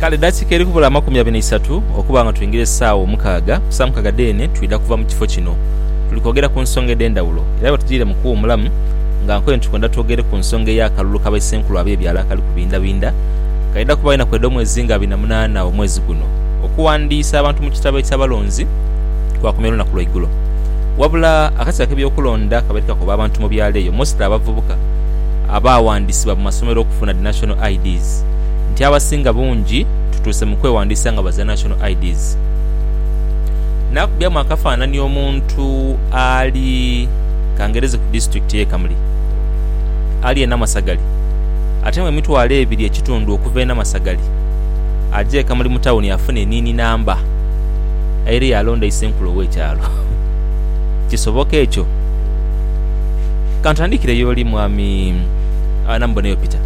Kale dakiika eri kubula amakumi abiri n'eisatu okuba nga twingira esaawa omukaaga, ku saa mukaaga dheene twidha kuva mu kifo kino. Tuli kwogera ku nsonga edh'endhawulo era bwetujiire mu kuwuumulamu nga nkoye nti twendha twogere ku nsonga ey'akalulu ka Baisenkulu ab'ebyalo akali kubindhabindha. Kaidha kuba enaku edh'omwezi nga abiri na munaana omwezi guno. Okuwandiisa abantu mu kitabo eky'abalonzi kwakomya olunaku lwaigulo. Wabula akakiiko ak'ebyokulonda kabaire kakoba abantu mu byalo eyo mostly abavubuka abaawandisibwa mu masomero okufuna dhi National IDs nti abasinga bungi tutuuse mu kwewandiisa nga baziira National IDs. Naakubyamu akafaanani omuntu ali, kangereze ku disitulikiti eye Kamuli, ali e Namasagali ate mu emitwalo ebiri ekitundu okuva e Namasagali aje e Kamuli mu tawuni afune eniini namba. aire yaalonda isenkulu ow'ekyalo. Kisoboka ekyo? Ka ntandikire y'oli, Mwami. Agho namubonayo Peter.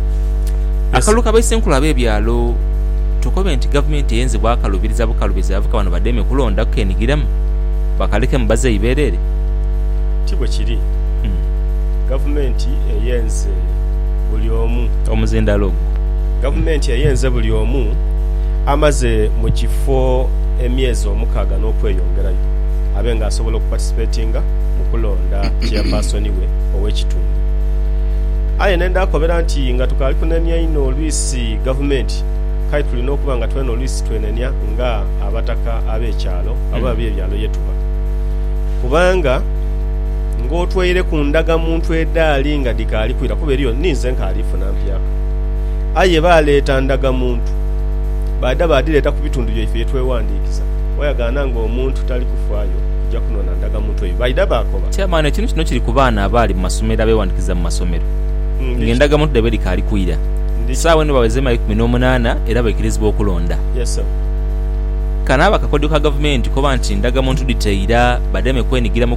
Akalulu ka baisenkulu ab'ebyalo, tukobe nti gavumenti eyenze bwakalubiriza bukalubiriza yavuka bano bademe kulonda kukenigiramu, bakalekemu bazeeyi beereere? Ti bwe kiri. Gavumenti eyenze buli omu. Omuzindaalo ogwo. Gavumenti eyenze buli omu amaze mu kifo. emyezi omukaaga n'okweyongerayo abe nga asobola okupatisipetinga mu kulonda cheyapaasoni we ow'ekitundu. Aye ne ndhakobera nti nga tukaali kunenia inho oluisi gavumenti, k'aye tulina okuba nga twena oluisi twenenia nga abataka ab'ekyalo oba ab'ebyalo ye tuba. Kubanga ng'otwaire ku ndagamuntu edhaali nga dhikaali kwira kuba eriyo ni nze nkaali funa mpyaka. Aye baaleeta ndagamuntu. baadha baadhireeta ku bitundu byaife ye twewandiikiza. Wayagaana ng'omuntu tali kufaayo kuja kunona ndagamuntu eyo, baidha baakoba. Chairman ekintu kino kiri ku baana abaali mu masomero abeewandiikiza mu masomero nga endagamuntu dhaibwe dhikaali kwira. Saagho eno baweza emyaka ikumi n'omunaana era baikirizibwa okulonda. Kano aba kakodyo ka gavumenti koba nti ndagamuntu dhiteira bademe kwenigira mu